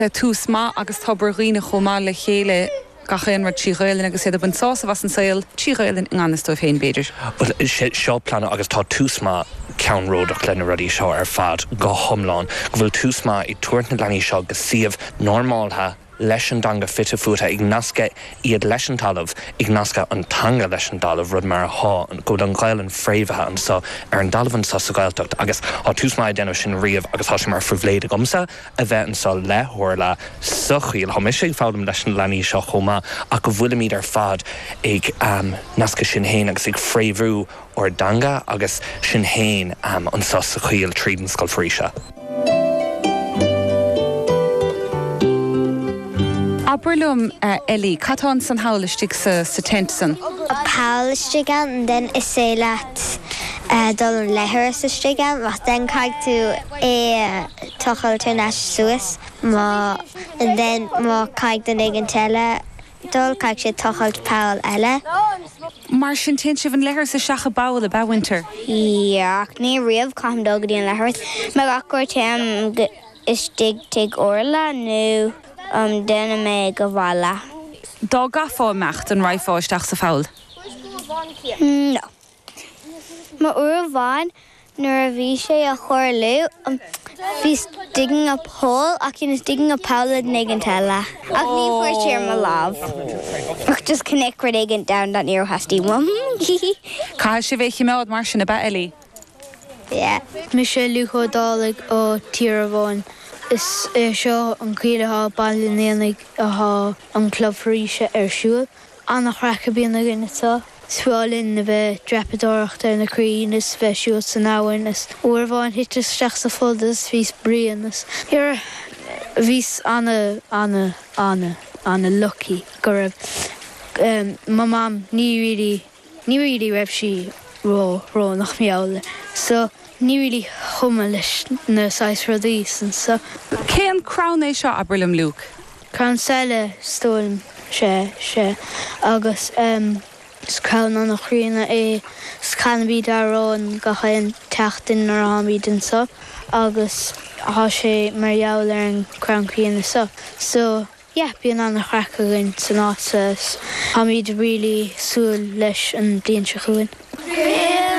le Tús Maith agus Tobar Dhuibhne chomh maith le chéile gach aon rud trí Ghaelainn agus iad ag baint sásamh as an saol trí Ghaelainn i ngan fhios dóibh féin, b'fhéidir. Bhuel, seo pleanú agus tá Tús Maith ceannródach le na rudaí seo ar fad go hiomlán, go bhfuil Tús Maith ag tabhairt na leanaí seo go suíomh normálta leis an dteanga fite fuaite, ag nascadh iad leis an talamh, ag nascadh an teanga leis an dtalamh, rud mar athá, go bhfuil an Ghaelainn fréamhaithe annso ar an dtalamh annso sa Ghaeltacht agus thá Tús Maith ag déanamh sin riamh agus thá sé mar phribhléid agamsa, a bheith annso le hOrla sa choill. Tá mise ag foghlaim leis na leanaí seo chomh maith ach go bhfuilimíd ar fad ag nascadh sinn fhéin agus ag fréamhú ár dteanga agus sinn fhéin annso sa choill tríd an Scoil Foraoise. Abair liom a Ellie, cad tá annsan thall istigh sa tent san? Thall istigh ann then is féidir leat dul an leithreas istigh ann, then caithfidh tú é a thochailt ar n-ais suas. then má caithfidh duine éigint eile dul, caithfidh siad tochailt poll eile. Mar sin, téann sibh an leithreas isteach i bpoll, ab ea, Winter? Yeah, ach ní riamh caithim dul go dtí an leithreas. Mar gach uair téim istigh tigh Orla nó déanaim é go bhaile. Dá gcaithfeá imeacht, an raghfá isteach sa pholl? No. Mar uair amháin nuair a bhí sé a tharlú bhíos digging up hole ach he was digging up poll duine éigint eile ach ní fuair sé ar mo lámh ach just cnoic rud éigint domhain that near hasty one. Caithfidh sibh é chimeád mar sin, ab ea Ellie? Yeah. Mise Liúc Ó Dálaigh ó Tír Abháin. Is é seo an choill athá i mBaile an Aonaigh athá an Club Foraoise ar siúl. Ana-chraic a bhíonn againn anso. Is feárr linn a bheith ag dreapadóireacht ar na crainn is a bheith ag siúl san abhainn is uair amháin thiteas isteach sa phluda is bhíos bréan is bhíos ana ana ana ana lucky go raibh mo mom ní really Ní really raibh sí ró ró nach mbeadh so ní really chuma leis na saghas rudaí san so. Cén crann é seo abair liom Luke? Crann sailí is dóigh liom is ea é agus em is crann ana-chríonna é is canaimíd ár n-amhrán gach aon tseachtain nuair a tháimíd annso agus thá sé mar gheall ar an crann críonna so so yeah bíonn an-chraic againn san áit 's táimíd really ag súil leis an bliain seo chugainn.